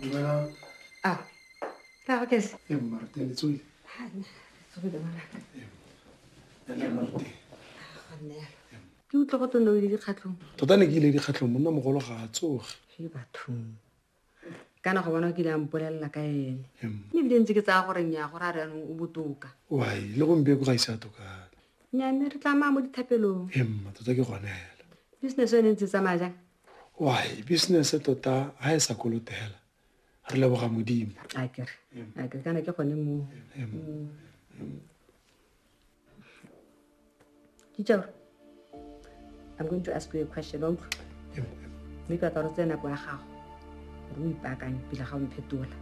Dumelang. Ah, tla go kesa. E mmarte le tsoi. Ha nna. Go be bona. Ya le mmarte. Ga nna. Ke utlwa go tsone o ile dikgatlhong. Tota ne ke ile dikgatlhong monna mogolo ga a tsoge. Ke bathong. kana go bona o kile a mpolelela ka ene mme ebile ntse ke tsaya gore nya gore a re anong o botoka wy le gompieko ga ise a tokana nya mme re tlamaya mo dithapelong emma tota ke gone fela business yone ntse tsamaya jang why business tota ha e sa kolotela re leboga modimo akere akere kana ke gone mo teacher i'm going to ask you a question wa utlwa mme ka ka re tsena nako ya gago gore o ipaakanye pila ga o mphetola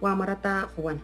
wa mo rata go bona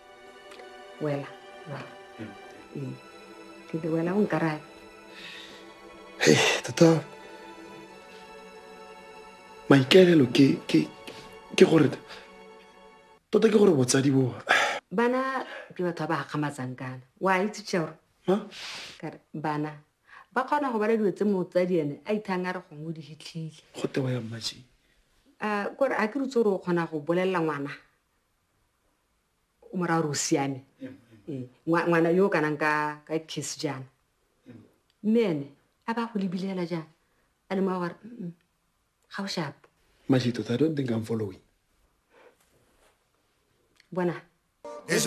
wela wela Ee. ke re wela o nkarabe Hey, tota maikaelelo ke ke ke gore tota ke gore botsadi bo bana ke batho ba ba gakgamatsang kana wa itse tšeore kare bana ba kgona go bala dilo tse motsadi ene a ithang a re gongwe o di hitlhile go tewa ya mmaji um kore a ke rutse gore o kgona go bolelela ngwana o mora gore o siame ee, ngwana yo o kanang ka kiss jaana mme ene a ba go lebilela jaana a le mo gore ga o shapo mashito i don't think i'm following bona